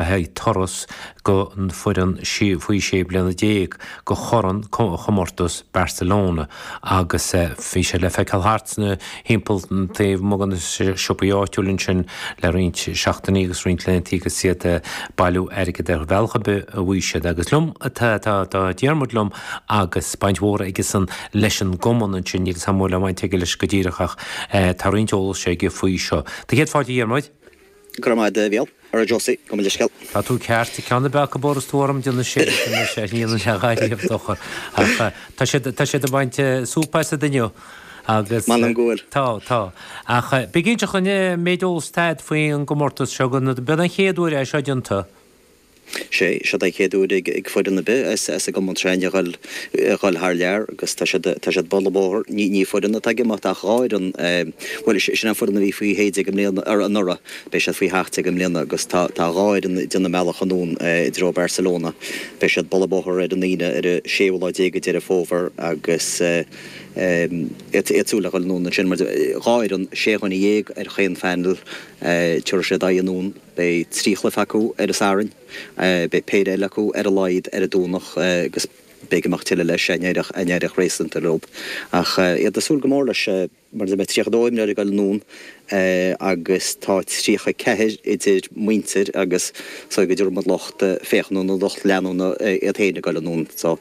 le haghaidh turas don fhoireann faoi sé bliana déag go Corn comórtas Barcelona agus bhí sé le feiceáil thart timpeall taobh amuigh de na siopaí áitiúil ansin le roinnt seachtainí agus roinnt laethanta agus iad ag bailiú airgid ar bhealach ar bith ab fhéidir siad agus liom, tá Diarmuid liom agus baint mhór aigesan leis an gcumann ansin níl a fhios agam cén bhaint aige leis go díreach ach tá roinnt eolais aige faoi seo. Tá céad fáilte a Dhiarmuid. Go raibh maith agat a Mhichíl, ara Josie, gabh mo leithscéal. Tá tú ceart, ceann de na peacaí bóthar is tú orm de na sé sin anois a níl le dhath riamh dochar ach tá siad, tá siad ag baint súp as iad inniu agus. M'anam go bhfuil. Tá, tá. Ach bí cinnte, a Choinn, an méid eolais atá agat faoin gcomórtas seo, go mbeidh an chéad uair é seo déanta. is é seo an chéad uair ag foireann ar bith as an gCumann Traen a dhul, a dhul thar lear agus tá siad, tá siad ag bualadh bóthair, ní, ní foireann atá ag imeacht ach dhá fhoireann, bhuel sé, sin an foireann a bhí faoi shé déag i mbliana, ar, anuraidh, beidh siad faoi sheacht déag i mbliana agus tá, tá dhá fhoireann ag déanamh a mbealach anonn i dtreo Barcelona, beidh siad ag bualadh bóthair ar an Aoine ar an séú lá déag de Dheireadh Fómhair agus iad, iad ag súil a dhul anonn ansin mar dhá fhoireann, sé dhuine dhéag ar chaon phainéal, tiúrfaidh siad aghaidh anonn. Beidh trí chluife acu ar an Satharn, beidh péire eile acu ar a laghad ar an Domhnach agus b'fhéidir beidh tuilleadh leis má éiríonn réasúnta leob. Ach iad ag súil go mór leis mar beidh 32 imreoir ag goil anonn agus tá 34 idir muintir agus is dóigh go dtabharfaidh muid lucht féachana nó lucht leanúna orthu féin ag goil anonn so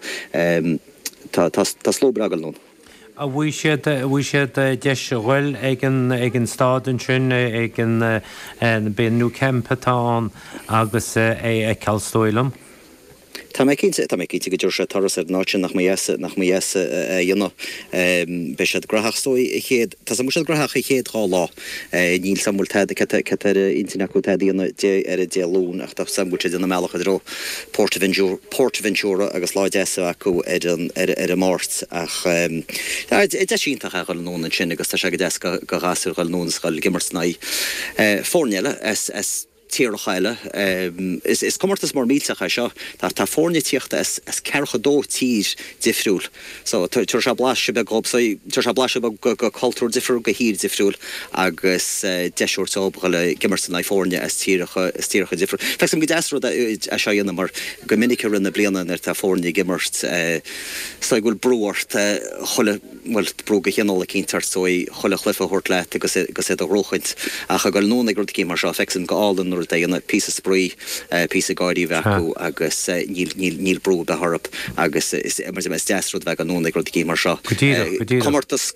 tá slua breá ag goil anonn. an bhfaighidh siad, an bhfaighidh siad deis a ghoil ag an, ag an staid ansin, ag an, ab é an Nou Camp atá ann, agus é a fheiceáil, is dóigh liom. Tá mé cinnte, tá mé cinnte go dtabharfaidh siad turas ar an áit sin, nach mba dheas, nach mba dheas a dhéanamh. Beidh siad graitheach, is dóigh, an chéad, tá súil go mbeidh siad graitheach an chéad dá lá. Níl 's agam bhfuil tada, an bhfuil sé ar intinn acu tada a dhéanamh ar Dé Luain ach tá 's agam go bhfuil siad ag déanamh a mbealach i dtreo Port, PortAventura agus lá deas acu ar an Máirt. Ach deis iontach é dhul anonn ansin agus tá sé go deas go ghasúir dhul anonn is dhul ag imirt in aghaidh foirne eile as. tíortha eile. Is comórtas mór millteach é seo, tá foirne ag tíocht as ceathracha dó tír difriúil so tabharfaidh sé blaiseadh beag dhób, tabharfaidh sé blaiseadh beag go cultúr difriúil, go thír difriúil agus deis a thabhairt dhób a dhul ag imirt in aghaidh foirne as tíreacha, as tíortha difriúil. Feictear dom gur deas an rud é seo a dhéanamh mar go minic i rith na bliana nuair atá foirne ag imirt sa gcaoi go bhfuil brú ort chuile, bhuel, brú de chineál eicínt ort, so, chuile chluife a thabhairt leat agus, agus é a ghnóthachtáil. Ach a ghoil anonn ag rud eicínt mar seo, feicsin, go hálainn an rud a dhéanamh, píosa spraoi, píosa gáirí a bheith acu agus níl, níl, níl brú a bheith orthu agus is, mar sin, is deas an rud a bheith ag goil anonn ag rud eicínt mar seo. Go díreach, go díreach. Comórtas,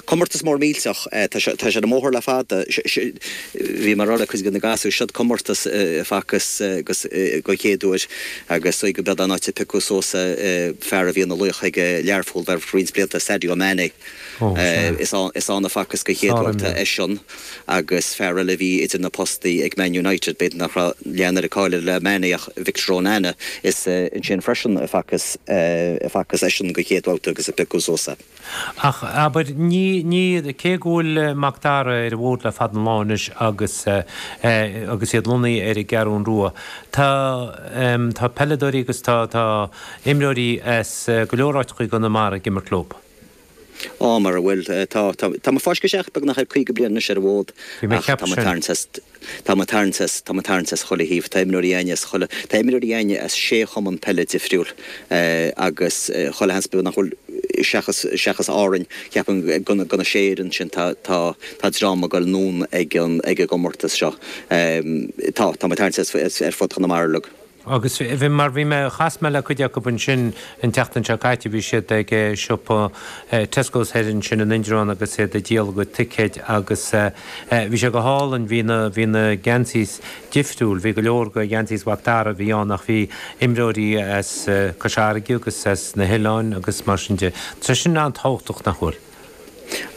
comórtas mór millteach, tá sé, tá sé ar an mbóthar le fada, bhí mé a rá le cuid de na gasúir, seod comórtas a facthas den chéad uair. Agus só go mba é an áit a piocadh suas an fear a bhí ina laoch ag Learpholl ar feadh roinnt blianta, Sadio Mané. Ó, sea. Is ann, is ann a facthas den chéad uair. Sárimreoir. Eisean agus fear eile a bhí idir na postaí ag Man United, b'fhéidir nach raibh, leath an cháil air le Mané ach Victor Onana. Is ansin freisin a facthas, a facthas eisean den chéad bhabhta agus a piocadh suas é. Ach, abair, ní, ní, cé go bhfuil Mac Dara ar an bhfód le fada an lá anois agus, agus iad lonnaithe ar an gCeathrún Rua, tá, tá peileadóirí agus tá, tá imreoirí as go leor áiteacha i gConamara ag imirt leo. Á, mar a bhfuil, tá, tá, tá muid i bhfoisceacht, beagnach ar caoga bliain anois ar an bhfód ach tá muid ag tarraingt as, Tá muid ag tarraingt as, tá muid ag tarraingt as chuile thaobh, tá imreoirí againn as chuile, tá imreoirí againn as sé chumann peile difriúil agus chuile sheans, b'fhéidir nach bhfuil, seachas, seachas Árainn, ceapaim, de na sé fhoireann sin tá, tá, tá dream a ghoil anonn ag an, ag an gcomórtas seo. Tá, tá muid ag tarraingt as ar fud Chonamara uilig. Agus bhí, mar bhí mé, chas mé le cuid acub ansin an tseachtain seo caite, bhí siad ag siopa Tesco's thoir ansin in Indreabhán agus iad ag díol a gcuid ticéid agus bhí sé go hálainn, bhí na, bhí na geansaís difriúil, bhí go leor go, geansaís Mhac Dara a bhí ann ach bhí imreoirí as Cois Fharraige agus as na hoileáin agus mar sin de. Tá sé sin an-tábhachtach, nach bhfuil?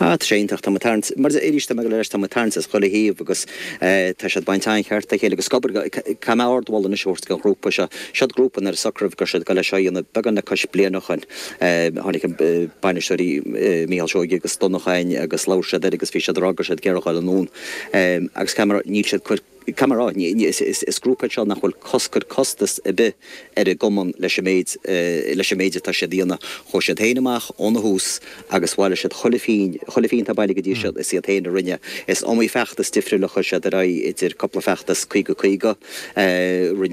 Ah, tá sé iontach, tá muid ag tarraingt, mar arís, tá mé ag rá leis, tá muid ag tarraingt as chuile thaobh agus tá siad ag baint an-cheart dhá chéile, agus abair, caithfidh mé ardmholadh anois a thabhairt don ghrúpa seo, siod grúpa nuair a socraíodh go raibh siad ag dul leis seo a dhéanamh, beagán le cois bliana ó shin, tháinig na bainisteoirí, Mícheál Seoige agus Donnacháin agus labhair siad air agus bhí siad a rá go raibh siad ag iarraidh a ghoil anonn agus caithfidh mé a rá, níl siad ag cuir. Caithfidh mé a rá, is grúpa é seo nach bhfuil cos, cur costas ar bith ar an gcumann leis an méid, leis an méid atá siad a dhéanamh. Chuaigh siad féin amach óna thús agus bhailigh siad chuile phínn, chuile phínn atá bailithe go dtí seo is iad féin a rinne. Is iomaí feachtas difriúil a chuir siad ar aghaidh, idir cúpla feachtas caoga caoga, rinne.